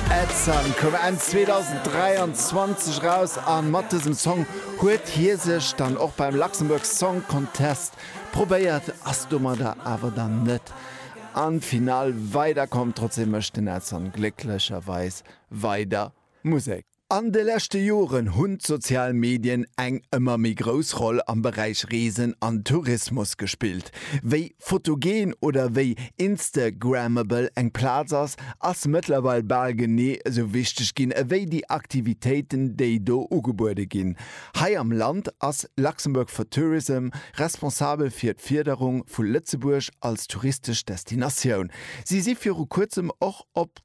Ed Sun koum Enn 2023 eraus a mat dësem Song huet hie sech dann och beim Luxembourg Song Contest probéiert, ass domadder awer dann net an d'Finall weiderkomm. Trotzdeem mécht den Ed Sun glécklecherweis weider Musek. An de leschte Joren hunn d'sozial Medien eng ëmmer méi grouss Roll am Beräich Reesen an Tourismus gespillt. Wéi photogen oder wéi instagrammable eng Plaz ass, ass mëttlerweil bal genee esou wichteg ginn ewéi déi Aktivitéiten, déi do ugebuede ginn. Hei am Land ass Luxembourg for Tourism responsabel fir d'Fierderung vu Lëtzebuerg als touristesch Destinatioun. Si si viru kuerzem och op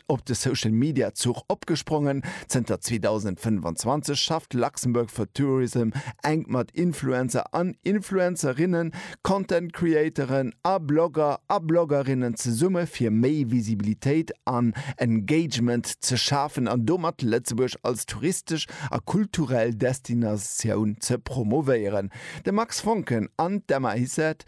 op de Social Media Zuch opgesprongen. Zënter 2025 schafft Luxembourg for Tourism enk mat Influencer an Influencerinnen, Content Creatoren a Blogger a Bloggerinnen zesumme fir méi Visibilitéit an Engagement ze schafen an domat Lëtzebuerg als touristesch a kulturell Destinatioun ze promovéieren. De Max Foncken an d'Emma Hissert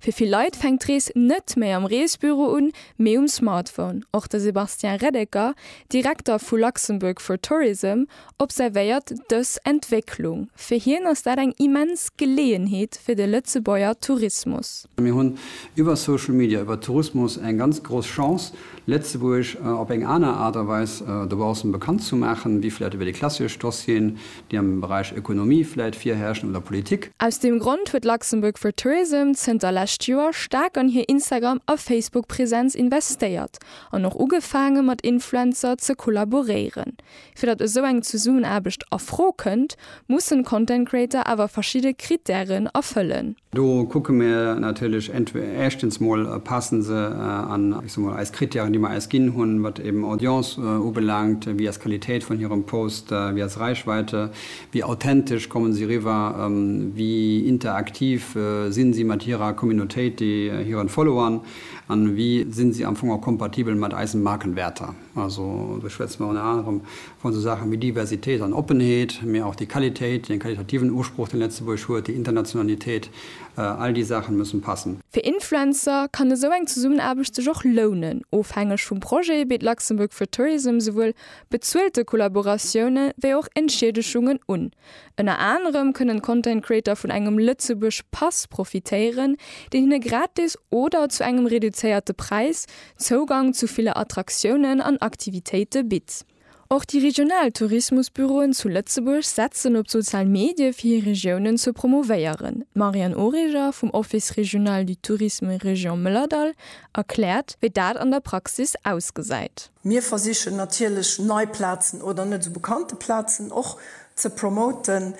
Fir vill Leit fänkt d'Rees net méi am Reesbüro un, mee um Smartphone. Och de Sébastien Reddecker, Direkter vu Luxembourg for Tourism, observéiert dës Entwécklung. Fir hien ass dat eng immens Geleeënheet fir de Lëtzebuerger Tourismus. Mir hunn iwwer Social Media, iwwer Tourismus eng ganz grouss Chance, Lëtzebuerg op eng aner Aart a Weis dobaussen bekannt ze maachen, wéi vläicht iwwer déi klassesch Dossieren, déi am Beräich Ökonomie vläit virherrschen oder Politik. Aus deem Grond huet Luxembourg for Tourism zënter lescht Joer staark an hir Instagram a Facebook Präsenz investéiert an och ugefaange mat Influencer ze kollaboréieren. Fir datt esou eng Zesummenaarbecht a Fro kënnt, mussen Content Creator awer verschidde Krittären erfëllen. Do kucke mir natierlech éischtens mol, passe se an, ech so mol, eis Krittären, déi mer eis ginn hunn, wat eben Audience ubelaangt, wéi ass d'Qualitéit vun hirem Post, wéi ass Reichweite, wéi authentesch kommen si riwwer, wéi interaktiv sinn si mat hirer Communautéit, hiren Followern an wéi sinn si am Fong och kompatibel mat eisen Markenwäerter. Also do schwätze mer ënner anerem vu sou Saachen wéi Diversitéit an Oppenheet, mee och déi Qualitéit, dee qualitativen Usproch, dee Lëtzebuerg huet, déi Internationalitéit, all déi Saachen mussen passen. Fir Influencer kann esou eng Zesummenaarbecht sech och lounen. Ofhängeg vum Projet bitt Luxembourg for Tourism souwuel bezuelte Kollaboratioune wéi och Entschiedeschungen un. Ënner anerem kënnen Content Creator vun engem Lëtzebuerg Pass profitéieren, deen hinne gratis oder zu engem reduzéierte Präis Zougang zu ville Attraktiounen an Aktivitéite bitt. Och déi regional Tourismusbüroen zu Lëtzebuerg setzen op d'sozial Medie fir hir Regiounen ze promouvéieren. D'Marianne Origer vum Office Régional du Tourisme Région Mëllerdall erkläert, wéi dat an der Praxis ausgesäit. Mir versichen natierlech nei Plazen oder net esou bekannte Plazen och ze promoten.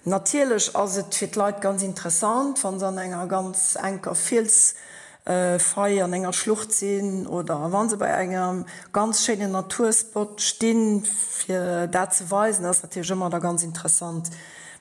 Natierlech ass et fir d'Leit ganz interessant, wa se an enger ganz enker Fielsfaille, an enger Schlucht sinn oder wa se bei engem ganz schéinen Naturspot stinn. Fir dat ze weisen ass natierlech ëmmer da ganz interessant.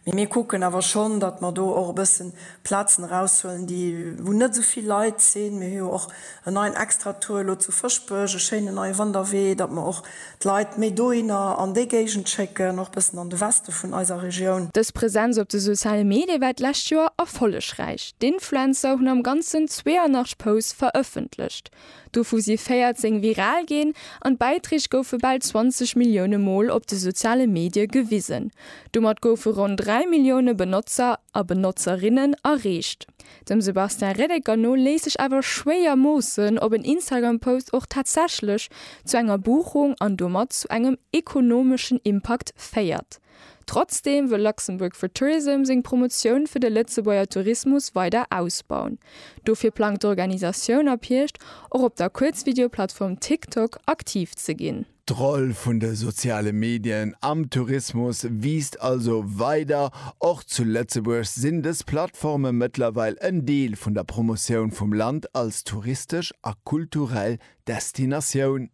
Mee mir kucken awer schonn, datt mer do och e bëssen Plazen eraushuelen, déi, wou net esou vill Leit sinn. Mir hu jo och en neien Extratour elo zu Fëschbech, e schéinen neie Wanderwee, datt mer och d'Leit méi dohinner an déi Géigend schécken, och bëssen an de Weste vun eiser Regioun. Dës Presenz op de soziale Medie war d'lescht Joer erfollegräich. D'Influencer hunn am Ganzen 82 Posts verëffentlecht, dovu si 14 viral ginn an d'Bäiträg goufe bal 20 Millioune Mol op de soziale Medie gewisen. Domat goufe ronn 3 Millioune Benotzer a Benotzerinnen erreecht. Dem Sebastien Reddecker no léisst sech awer schwéier moossen, ob en Instagram-Post och tatsächlech zu enger Buchung an domat zu engem ekonomeschen Impakt féiert. Trotzdeem wëll Luxembourg for Tourism seng Promotioun fir de Lëtzebuerger Tourismus weider ausbauen. Dofir plangt d'Organisatioun ab Hierscht och op der Kuerzvideoplattform TikTok aktiv ze ginn. D'Roll vun de soziale Medien am Tourismus wiisst also weider. Och zu Lëtzebuerg sinn dës Plattforme mëttlerweil en Deel vun der Promotioun vum Land als touristesch a kulturell Destinatioun.